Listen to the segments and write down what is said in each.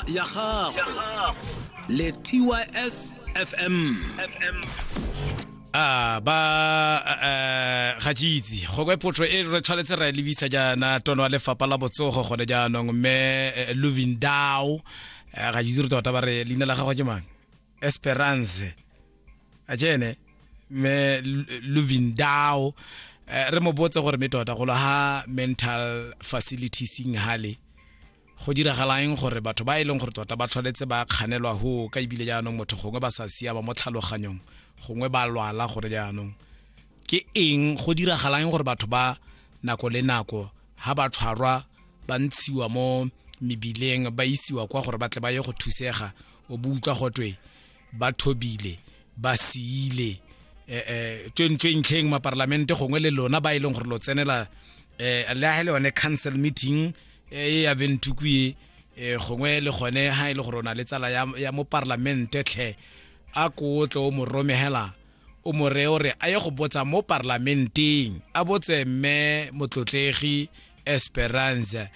ya gago le tys fm a ba eh, ga jeitse gongwe potso e re tshwanetse ra e lebisa jaana tono wa lefapha la botsogo gone jaanong mme eh, lovin dow eh, ga jeitse re tota ba re leina la gago ke mang esperance a jene mme Lu- lovin dow Eh, re mo botse gore mme tota golo ha mental facilities hale Go diragalaeng gore batho ba e leng gore tota ba tshwanetse ba kganelwa go ka ebile jaanong motho gongwe ba sa siama mo tlhaloganyong gongwe ba lwala gore jaanong ke eng go diragalaeng gore batho ba nako le nako ha ba tshwarwa ba ntshiwa mo mebileng ba isiwa kwa gore ba tle ba ye go thusega o bo utlwa gotwe ba thobile ba siile eh, eh, tswentswentlheng maparlamente gongwe le lona ba e leng gore lo tsenela eh, le ga le yone council meeting e ya ventuku e gongwe le gone ga e le gore o na le tsala ya mo parlamente tlhe a ko tle o mo romegela o mo reye gore a ye go botsa mo parlamenteng a botse mme motlotlegi esperance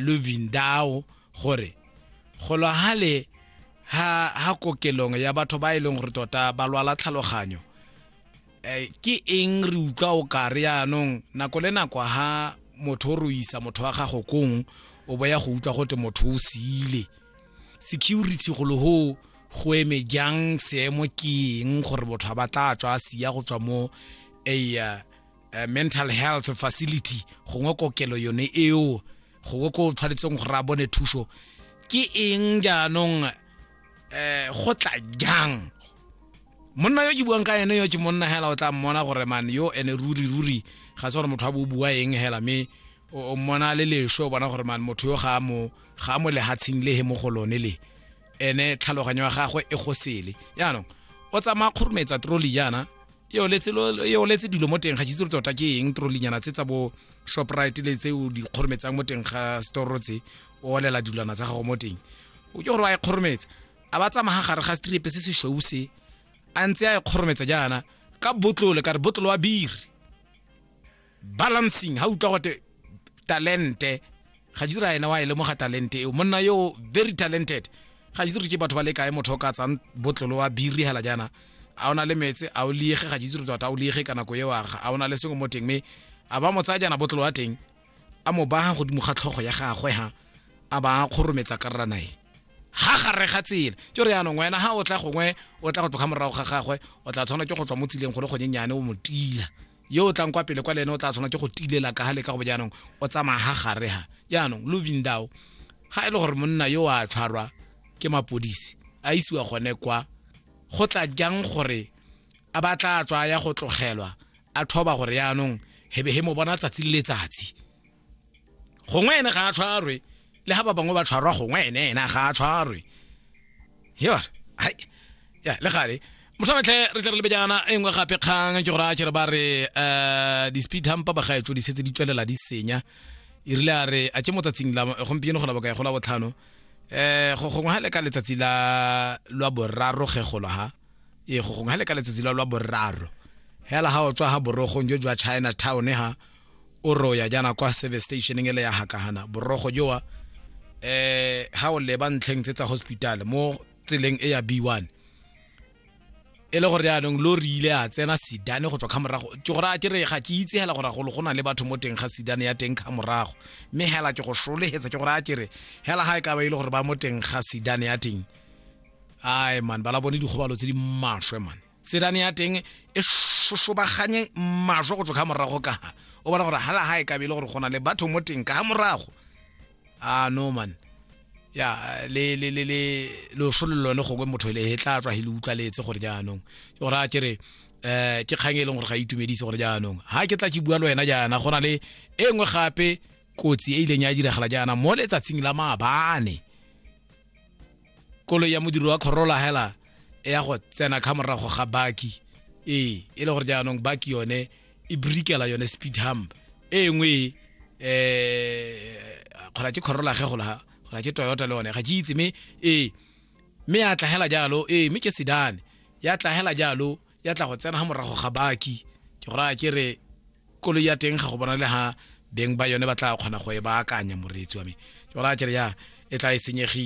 lovindao gore golo hale ha ha kokelong ya batho ba e leng gore tota ba lwala tlhaloganyo eh, ke eng re utlwa o ka re yaanong nako le nako ha motho o roisa motho wa gago kong o boya go utlwa gote motho o siile security golo ho go eme jang seemo ke eng gore motho a batla a tswa a sia go tswa mo a uh, mental health facility gongwe kokelo yone eo gongwe ko o tshwanetseng gore a bone thuso ke eng jaanong eh go tla jang monna yo ke buang ka ene yo ke monna hela o tla mmona gore man yo ene ruri ruri ga se gore motho a bo bua eng hela mme o mmona le lesho o bona gore man motho yo ga mo ga mo lehatsheng le he mo go lone le ene tlhaloganyo ya gagwe e go sele yaanong o tsamaya kgorometsa troli jaana e oletse dilo mo teng ga jitse tota ke eng trolinyana tse tsa bo shoprite le tse o di kgorometsang mo teng ga store tse o olela dilwana tsa gago mo teng o ke gore wa e kgorometsa a ba tsamaya gare ga strepe se se shweu se a ntse a e kgorometsa jaana ka botlole ka re botlolo wa biri balancing ha utlwa gote talente ga jitse ra ene wa e lemoga talente eo monna yo very talented ga jitse re ke batho ba le kae motho o ka tsang botlolo wa biri hela jaana a o na le metse a o liege ga jitse re tota o liege ka nako eo aga a o na le sengwe mo teng mme a ba mo tsaya jaana botlolo wa teng a mo baga godimo ga tlhogo ya gagwe ha a ba kgorometsa karrana e ha gare ga tsela ke re yaanong wena ha o tla gongwe o tla go tloga morago ga gagwe o tla tshwana ke go tswa mo tseleng go le gonyenyane o mo tila yo o tlang kwa pele kwa le ene o tla tshwana ke go tilela ka gale ka go bo jaanong o tsamaya ga gare ga jaanong lovindao ga e le gore monna yo a tshwarwa ke mapodisi a isiwa gone kwa go tla jang gore a ba tla tswa ya go tlogelwa a thoba gore jaanong hebe he mo bona tsatsi le letsatsi gongwe ene ga a tshwarwe le ga ba bangwe ba tshwarwa gongwe ene ena ga a tshwarwe yona hai ya le gale motlhametlhe re tle re lebe jaana e nngwe gape kgang ke gore a kere ba re um di-speed hampa bagaetso di setse di tswelela di senya e rile a re a ke mo tsatsing la gompieno go la bokae go la botlhano um go gongwe ga le ka letsatsi la lwa boraro ge golo ha ee go gongwe ga le ka letsatsi la lwa boraro hela ga o tswa ga borogong jo jwa china town ha o roya jaana kwa service stationeng ele ya hakahana borogo jowa eh ha o leba ntlheng tse tsa hospital mo tseleng e ya b1 e le gore jaanong lo rile a tsena sidane go tswa kga morago ke gore a ke re ga ke itse hela gore golo go na le batho mo teng ga sidane ya teng kga morago mme hela ke go sholehetsa ke gore a ke re hela ga e ka ba e le gore ba mo teng ga sidane ya teng ai man ba la bone dikgobalo tse di maswe man tselane ya teng e šošobaganye majo go tswa ka morago ka o bona gore hala ga e kabele gore go na le batho mo teng ka morago a ah, no man ya le le le le lo sholo lone go kwe motho le he tla tswa he le utlwa letse gore jaanong ke gore a kere eh ke kgang e leng gore ga e itumedise gore jaanong ha ke tla ke bua le wena jaana go na le e nngwe gape kotsi e ileng ya diragala jaana mo letsatsing la maabane koloi ya modiri wa kgorola hela e ya go tsena ka morago ga baki ee e le gore jaanong baki yone e brikela yone speed hump e nngwe um kgona ke kgorola ge gola kgona ke toyota le one ga ke itse mme ee mme ya tlagela jalo ee mme ke sedane ya tlagela jalo ya tla go tsena ga morago ga baki ke gore a ke re koloi ya teng ga go bona le ga beng ba yone ba tla kgona go e baakanya moreetsi wa me ke gore a kere ya e tla e senyegile